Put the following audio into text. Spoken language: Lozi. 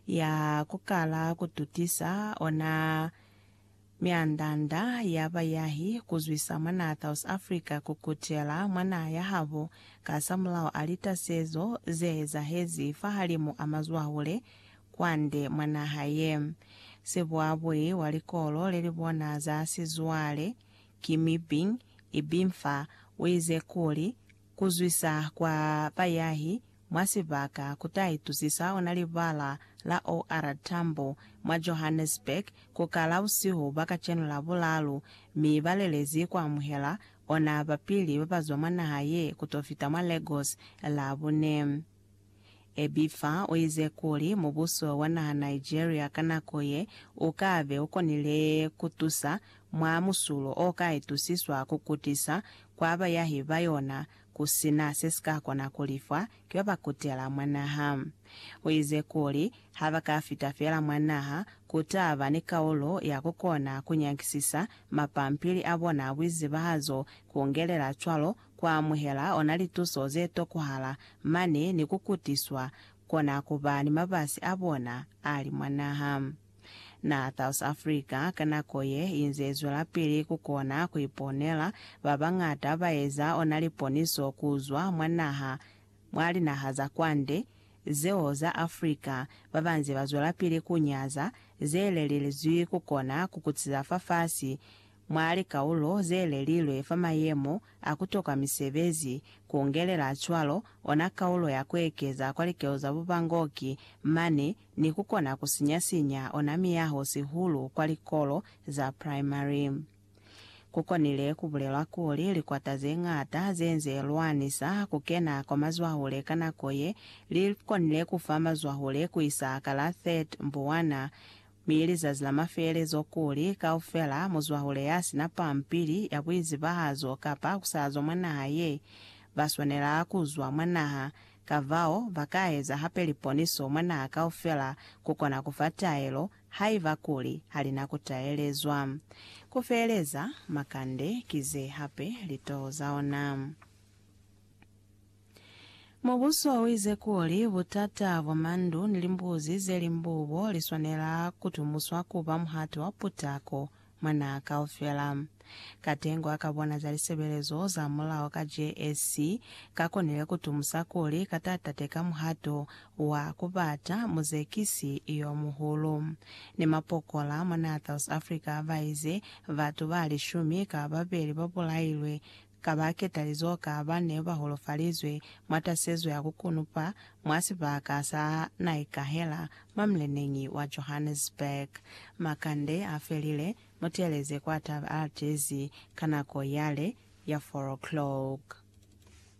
ya ku kala ku tutisa ona myanda-nda ya bayahi ku zwisa mwa naa South Africa ku kutela mwa naha ya habo kasamulaho a litasezo ze ezahezi fahalimu a mazwahule kwande mwa naha ye. Sibuabui wa likolo le li bona za sizwale, Kimmy Bing, Ibimfa, u ize kuli, Ku zwisa kwa bayahi mwa sibaka ku ta itusisa ona libala la OR Tambo mwa Johannesburg ku kala busihu bwa kacenu Labulalu, mi ba lelezi ku amuhela ona ba pili ba ba zwa mwa naha ye ku to fita mwa Lagos Labune. Ebifa u ize kuli mubuso wa naha Nigeria ka nako ye u ka be u konile ku tusa mwa musulo o ka itusiswa ku kutisa kwa bayahi ba yona ku si na se si ka kona ku lifwa ki ba ba kutela mwa naha. U ize kuli, Ha ba ka fita fela mwa naha, ku ta ba ni kaulo ya ku kona ku nyakisisa mapampili a bona a buizibahazo, ku ngelela cwalo ku amuhela ona lituso ze tokuhala mane ni ku kutiswa, kona ku ba ni mabasi a bona a li mwa naha. Na South Africa ka nako ye inze izwelapili ku kona ku iponela, ba bañata ba eza ona liponiso ku zwa mwa naha, mwa linaha za kwande, zeo za Africa, ba ba nze ba zwelapili ku nyaza ze lelilzwi ku kona ku kutiza fafasi mwa likaulo ze lelilwe fa mayemo a ku toka misebezi, ku ngelela cwalo ona kaulo ya ku ekeza kwa likeo za bubangoki mane ni ku kona ku sinya-sinya ona miyaho sihulu kwa likolo za primary. Ku konile ku bulelwa kuli likwata ze ñata ze nze lwanisa ku kena kwa mazwahule ka nako ye li konile ku fa mazwahule ku isa ka la 30 Mbuwana, mi lizazi la mafelelezo kuli kaufela muzwahule ya si na pampili ya buizibahazo kapa ku salazwa mwa naha ye, ba swanela ku zwa mwa naha. Kafao, ba ka eza hape liponiso mwa naha kaufela ku kona ku fa taelo, haiba kuli ha li na ku taelezwa. Ku feeleza, makande ki ze hape litoho za ona. Mubuso u ize kuli butata bwa mandu ni limbuzi ze limbubo li swanela ku tumuswa ku ba muhato wa putako Mwa naha kaufela. Katengo a ka bona za lisebelezo za mulao ka JSC ka konile ku tumusa kuli ka tatate ka muhato wa ku bata muzekisi yo muhulu. Ni mapokola mwa naha South Africa ba ize batu ba lishumi ka babeli ba bulailwe Ka ba ketalizo ka ba ne ba holofalizwe, mwa tasezo ya ku kunupa, mwa sibaka sa Naikahela, mwa muleneñi wa Johannesburg. Makande a felile, mu teeleze kwa Taba Aldersi ka nako yale ya four o'clock.